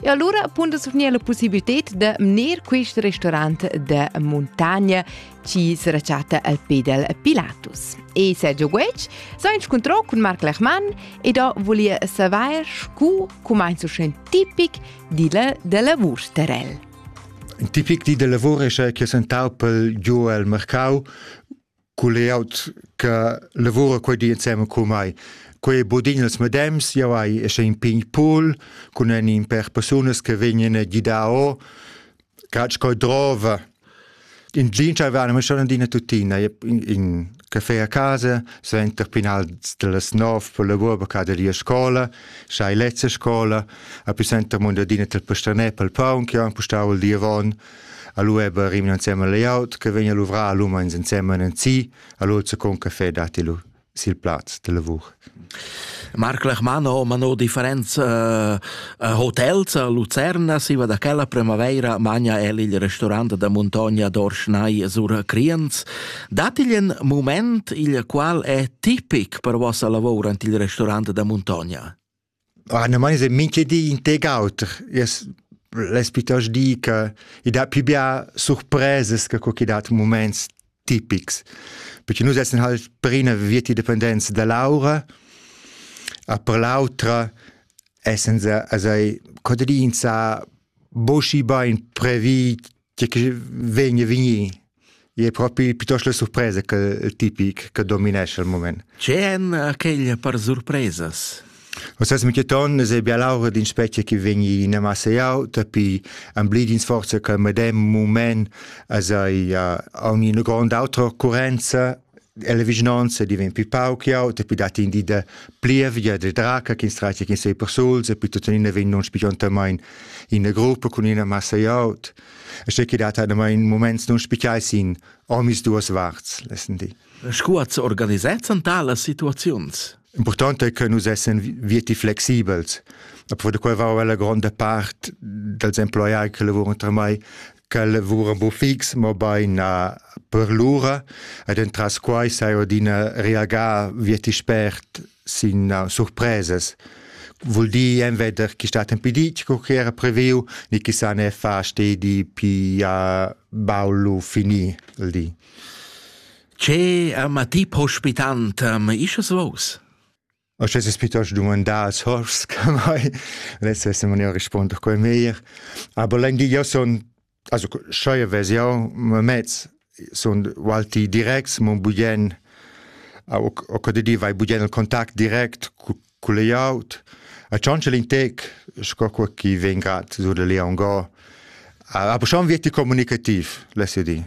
E allura appunta surgnir la possibilità da mner quest restaurant da montagna chi se rechatta al pe del Pilatus. E Sergio Guetg s'ha inscuntrò cun Marc Lechmann ed ho volia savair scu cumainzo schen tipic dilla da lavur Starell. Tipic di da lavur escha che sentau pel giu el mercau cu layout che lavura quei di insema cu mai. Quei budin els medems, jau hai esce in pign pool cun en in per persunas che vegnan a gidar o catsch coi drova. In jean c'avevano ma schon adina tuttina in, in caffè a casa, suenter pinal das nov per lavur per caderia scola, schai lezza scola, a più senter mund adina tel pastanè pel paun che han pustau il diavon Allo è bel rimna insieme al layout che vegna luvra l'uma insieme in si, allo c'è con caffè dati lu sil plaz de lavur. Marc Lechmano, ma no differenz uh, hotels a Lucerna, si va da quella primavera magna el il restaurant da Montagna d'Orschnai sur Criens. Datigl in moment il qual è tipic per vossa lavor ant il restaurant da Montagna? Ah, ne mai se minche di in tec auter. Jas l'es piuttost di che i dat pü bia surpresas che co chi dat muments tipics. Perché nus essan halt prina vietti dependenza da l'aura, a per l'autra essan se a sai contadins a boschi bain previ tgi che vegn vegnir è propi piuttosto la surpresa che tipic che dominesce al moment. C'è en aquella per surpresas? O sas mi cheton se bia laura din specie che vegni in massa auta pi amblidin sforza che medem moment as ai a ogni grande autra occorrenza la vischnanca diventa più pauc auta, più dat in di da plievgia, da draca ch'ins traita ch'ins ei persuls e più tuttenina vegn nus spiciontamain ina gruppa cun ina massa aut. E sche che dat adamain moments nus spicai sin omis duas varts, lessendi. Sco az organisezzan talas situaziuns? Important è che nus essen viti flexibels. A da quel va la gronda part dals emploiai che lavuran tra mai quel lavura bu fix, mo bein na per lura, ed entras quai sai ordina reagar vieti spert sin uh, surpresas. Vul dir enveder chi stat impedit co che era previu, ni chi sa ne fa stedi pi a baulu fini il di. Ce uh, ma ti pospitant um, isches vos? O sche es piuttost dumandà als hors che mai, less es in maniera risponder quel meglier. Aber l'Enghia sun, also scheu vez jau, ma mez sun walti directs, mon bugen, o co de di vai bugen il contact direct cul layout. A tschonchel in tec, sco quel chi vegn grad sur da Leon Go. Aber schon wird comunicativ, less io dir.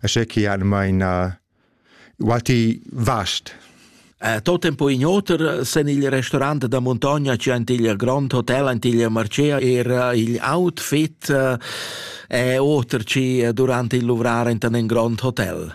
Asce che han maina walti vast. Eh, tot tempo in oter sen il restaurant da montagna c'è ant il grand hotel ant il marcea era il outfit eh, e oter ci durante il luvrare in un grand hotel.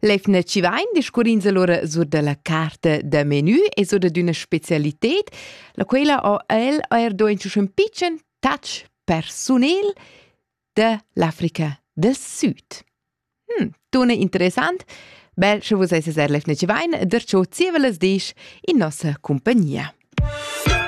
L'efna ci vain discurrins allura sur dalla carta da menü e sur d'üna specialited, la quela ho el eir do in ün pitschen touch persunel da l'Africa del Süd. Hm, tuna interessant, bel sche vus esses er l'efna ci vain, der ciò zievelas disch in nossa compagnia.